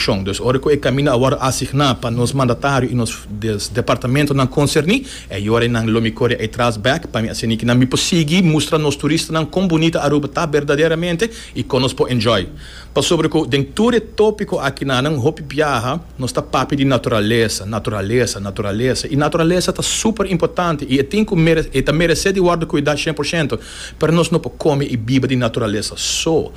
Shon. Dus ora cu e camino awor a asigna pa nos mandatario y nos departamentonan concerni, e yora y nan lo mi core ey tras bek pa mi asina kinan mi por sigui mustra nos turistanan con bunita Aruba ta berdaderamente y con nos por enjoy. Pasobra cu den tur e topico akinan nan hopi biaha nos ta papia di naturalesa, naturalesa, naturalesa y naturalesa ta super importante y e tin cu mere e ta merece di wordo cuida cien por ciento, pero nos no por come y biba di naturalesa so.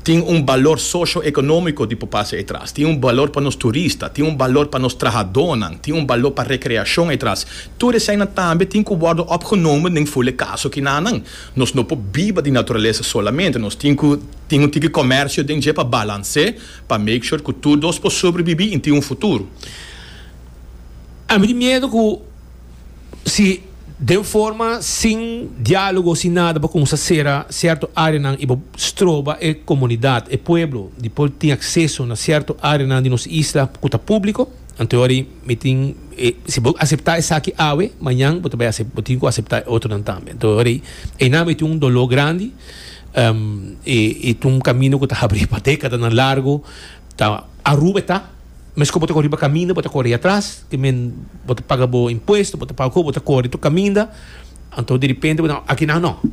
tin un balor socio-economico di por pasa etras, tin un balor pa nos turista, tin un balor pa nos trahadornan, tin un balor pa recreacion etras. Tur eseinan tambe tin cu wordo opgenomen den fule caso kinanan. Nos no por biba di naturalesa solamente, nos tin cu tin un tiki comercio den dje pa balance, pa make sure cu tur dos por sobrebibi y tin un futuro. A mi tin miedo cu. Si den forma sin dialogo sin nada bo cuminsa cera cierto areanan y bo stroba e comunidad, e pueblo di por tin acceso na cierto areanan di nos isla cu ta publico, anto wari mi tin e si bo acepta esaki awe mañan bo ta bay bo tin cu acepta e otronan tambe. Anto wari einan mi tin un dolor grandi y ta un camino cu ta habri pa decadanan largo. Ta Aruba e ta. Mes ku bo ta kor riba kaminda bo ta kor atras tin men bo ta paga bo impuesto bo ta paga ku bo ta kor di tur kaminda anto derepente bo ta aki nan no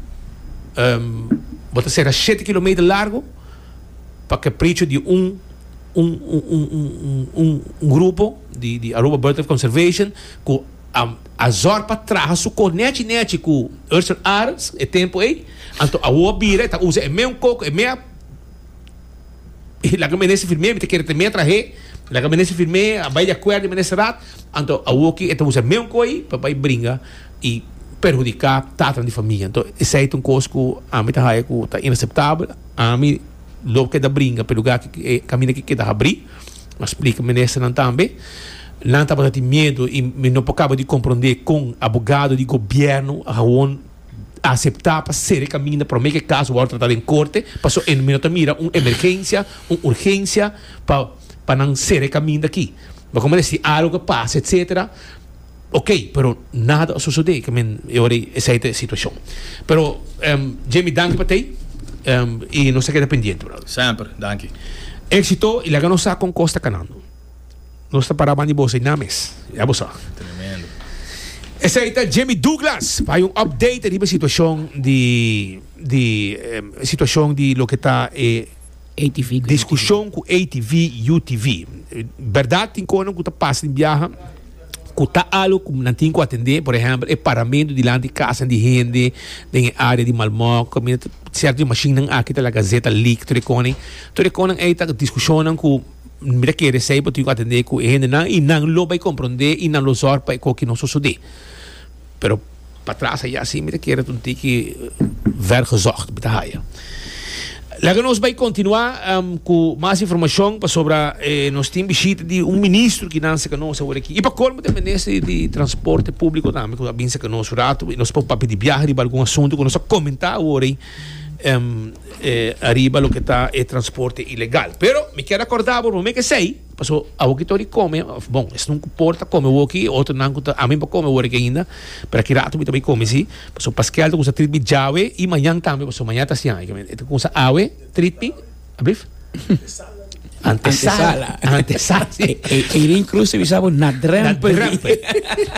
bo ta sera shete kilometer largo pa ke precio di un un un un grupo di di Aruba Birdlife Conservation ku a a zòr pa traha su kor nèchi nèchi ku Urser Arends e tempu ei anto awo a bira e ta usa e meun koko e mea. laga menester firm'é mi ta kere tem'é trah'é laga menester firm'é a bai di akuerdo di ministerat anto awoki e ta usa e mesun koi pa bai bringa i perhudiká tatanan di famia anto esei ta un kos ku ami ta haña ku ta inaseptabel ami lo keda bringa p'e lugá ki e kaminda ki keda habrí a splika ministernan tambe nan tabata tin miedu i mi no por kaba di komprondé kon abogado di gobièrnu a hawon. aseptá pa sere kaminda promé ku e kaso wòrdu tratá den korte, pasobra e no ta mira un emergensia, un urgensia pa pa nan sere kaminda akí. Bo ta mira si algu a pasa etsetera, okey, pero nada a sosodé ku men e ora ei, esei ta e situashon. Pero, Jamie, danki pa t'ei, i nos ta keda pendiente, brother. Semper. Danki. Éksito i laga nos sa kon kos ta kanando. Nos ta para bandi boso y nan mes. Ya bo sa. Tremendo. Esei ta Jimmy Douglas pa hay un update riba situacion di di eh, situacion di lo que ta eh, ATV ku discusion ku ATV UTV. Verdad tin konan ku ta pas tin biaha ku ta alo ku nan tin ku atende, por ejemplo, e paramento dilanti casa di hende den e área di Malmok, mina ta cierto di machine nan aki ta laga zeta leak, tur e konen. Tur e konen ei ta discusionnan ku Mi ta kere esei bo tin ku atendé ku e hendenan i nan lo bai komprondé i nan lo sòr pa e koki no sosodé. Pero patras ayá si mi ta kere ta un tiki vergezocht mi ta haya. Laga nos bai kontinuá ku mas informashon pasobra nos tin bishita di un ministro ku nan seka nos awor aki. I pa kolmo ta e minister di transporte públiko tambe ku a bin seka nos un ratu i nos por papia di biaha riba algun asuntu ku nos a komentá awor ei. ariba loke ta e transporte ilegal. Pero mi kier acorda bo, bo me kesey, paso awoki ta ori come, of bon, esnan cu por ta come awoki, e otronan cu ta, ami no bo come awor aki ainda, pero aki rato mi ta bay come si, paso paskel ta cuminsa treat mi djawe y mañan tambe, paso maña ta siña, e ta cuminsa awe treat mi. Abrief? Antesala. Antesala. Eileen Cruz te bisa bo na drempel. Na drempel.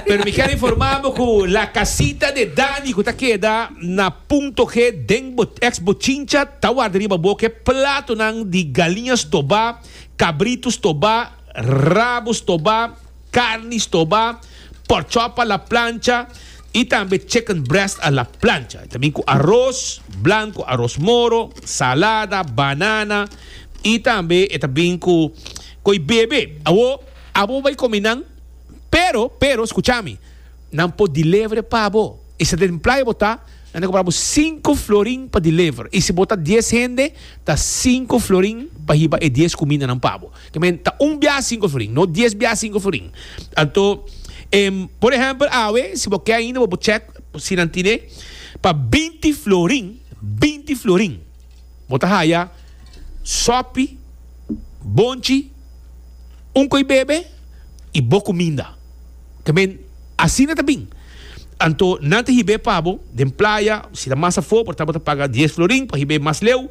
Pero mi ker informa bo ku la kasita de Dani ku ta keda na punto G den eks Bochincha ta warda riba bo ke platonan di galiña stobá, kabritu stobá, rabo stobá, Carni stoba, pork chop a la plancha y tambe chicken breast a la plancha. Ta bin cu aros blanco, aros moro, salada, banana y tambe e ta bin cu coy bebe. Awo abo bay comi nan, pero, pero, scucha mi, nan por deliver pa bo. Y si den playa bo ta, nan ta cobra bo cinco florin pa deliver. Y si bo ta diez hende, ta cinco florin pa hiba e diez cumindanan pa bo. Te men ta un bia sinku florin, no dies bia sinku florin. Anto, em, por ehèmpel awe, si bo ke ainda bo por chèk si nan tine pa binti florin, binti florin, bo ta haya sòpi, bonchi, un koi bebe i bo kuminda. Te men asina ta bin. Anto, nan ta hib'é pa bo den playa, si ta mas afó, por ta bo ta paga dies florin pa hib'é mas leu.